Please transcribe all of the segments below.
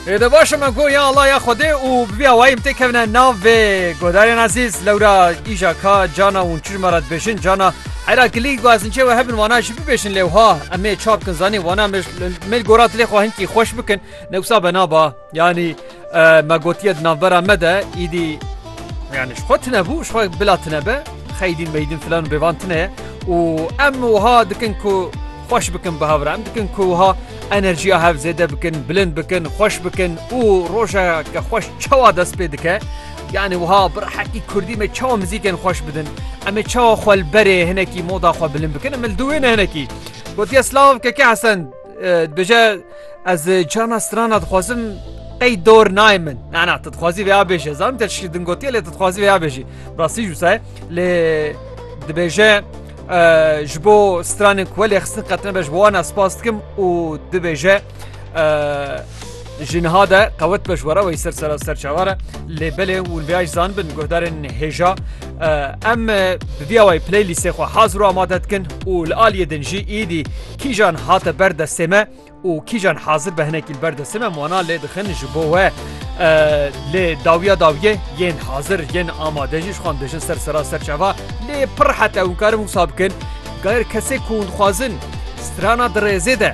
Ê de baş e me got ya Allah ya Xwedê û bi vî awayî em tê kevine nav vê guhdarên ezîz lewra îja ka cana hûn çi ji me re dibêjin cana hera kilî guazinçê we hebin wana jî bibêjin lê wiha em ê çar bikin zanîn wana me me li gora dilê xwe hinkî xweş bikin ne wisa be naba Yanî me gotiye di navbera me de îdî yani ji xwe tune bû ji xwe bila tune be xeydîn meydîn filan bêvan tune ye û em wiha dikin ku xweş bikin bi hevra em dikin ku wiha enerjiya hev zêde bikin bilind bikin xweş bikin û rojeke xweş çawa dest pê dike yani wiha bir heqî kurdî me çawa mizîkên xweş bidin em ê çawa xwe li berê hinekî moda xwe bilind bikin em li dû wê ne hinekî gotiye slav keke hesen Dibêje ez çana strana dixwazim qey dor nayê min nana tu dixwazî vêya bêje zan te şî din gotiye lê tu dixwazî vêya bêjî rastî jû se lê dibêje ji bo stranên ku lê xistin qetine be ji bo wana spas dikim û dibêje Ji niha de qewet be ji were wê ser sera ser çavar e lê belê hûn vê aj zan bin guhdarên hêja em bi vîya wayê playlîstê xwe hazir û amade dikin û li aliyê din jî îdî kîjan hate ber destê me û kîjan hazir be hinekî li ber destê me wana lê dixin ji bo we lê dawiya dawiyê yên hazir yên amade jî ji xwan dijin ser sera ser çava lê pir hete hûn karin wisa bikin gayr kesê ku hûn dixwazin strana dirêzê de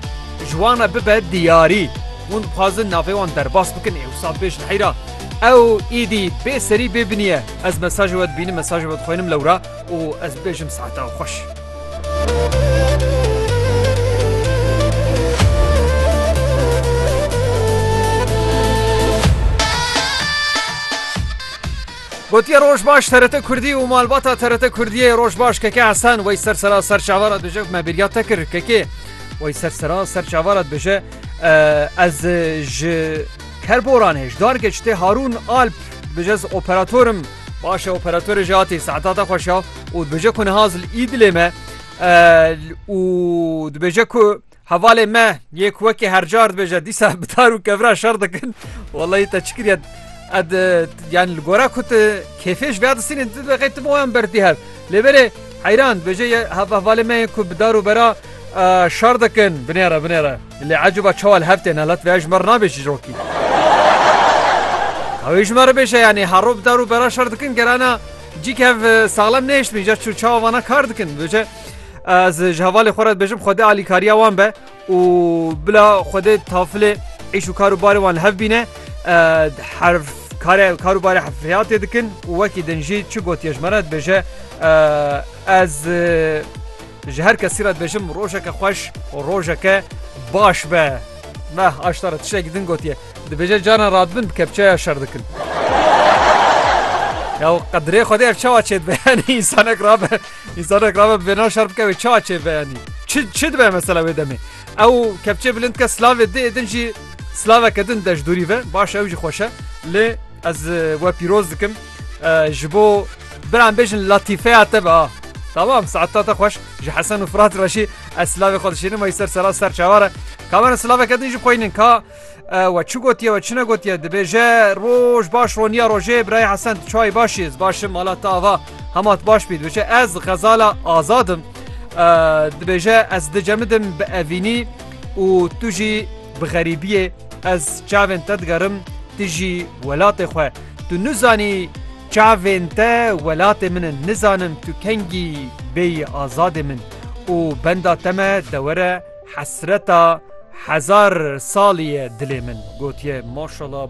Ji wan re bibe diyarî. Hûn dixwazin navê wan derbas bikin ê wisa bê ji heyra. Ew îdî bê serî bê binî ye. Ez mesajê we dibînim, mesajê we dixwînim lewra û ez bibêjim saeta we xweş. Gotiye roj baş TRT Kurdî û malbata TRT Kurdiyê Rojbaş Keke Hesen wey ser sera ser çavara duje me bêrya te kir Kekê. Wê ser sera ser çavara dibêje ez ji kerboran hêj darge ji tê Harûn Alp dibêje ez operatorim başe operatorê jî hatî saeta te xweş ya û dibêje ku niha zil îdilê me û dibêje ku hevalê me yê ku wekî hercar dibêje dîsa bi tar û kevra şer dikin Wallahî te çi kiriye ed yani li gora ku tu kêfêj vêya disînê tu deqê tu boyan berdî hev Lê berê heyran dibêje yê hevehvalên me yên ku bi dar û bera şer dikin binêre binêre. Lê ecûba çawa li hev têne lat vêya ji me re nabê çîrokî. Ewê ji me re bêje yanî her roj bi dar û bera şer dikin gerana cî ke hev saxlem nehişt min îcar çawa vana kar dikin. Dibêje ez ji hevalê xwe re dibêjim xwedê alîkariya wan be. û bila Xwedê tafilê îş û kar û barê wan li hev bîne, herf kare kar û barê hefriyatê dikin û wekî din jî çi gotiye ji me re dibêje ez ji her kesî re dibêjim rojeke xweş û rojeke baş be. Meh aşta re tiştekî din gotiye, dibêje carên radibin bi kepçeya şer dikin. Ya qedirê Xwedê ev çawa çêdibe yanî însanek rabe Însanek rabe bi vêna şer bike wê çi açê veyenî? Çi çi dibe mesela wê demê? Ew kepçê bilind dike silavê dê din jî silaveke din de ji dûrî ve baş ew jî xweş e lê ez we pîroz dikim ji bo biran bêjin latîfeya te be ha Tamam saeta te xweş ji hesen û firat re jî ez silavê xwe dişînim ey ser sera ser çawa re kamera silaveke din jî xweynin ka We çi gotiye we çi negotiye dibêje roj baş roniya rojê birayê hesen tu çayî baş iz başim mala te ava hema tu baş bî dibêje ez xezala azadim dibêje ez dicemidim bi evînî û tu jî bi xerîbiyê ez çavên te digerim tu jî welatê xwe tu nizanî çavên te welatê min in nizanim tu kengî bêyî azadê min û benda te me dewere Hesreta hezar salî ye dilê min. Gotiye, Maşala.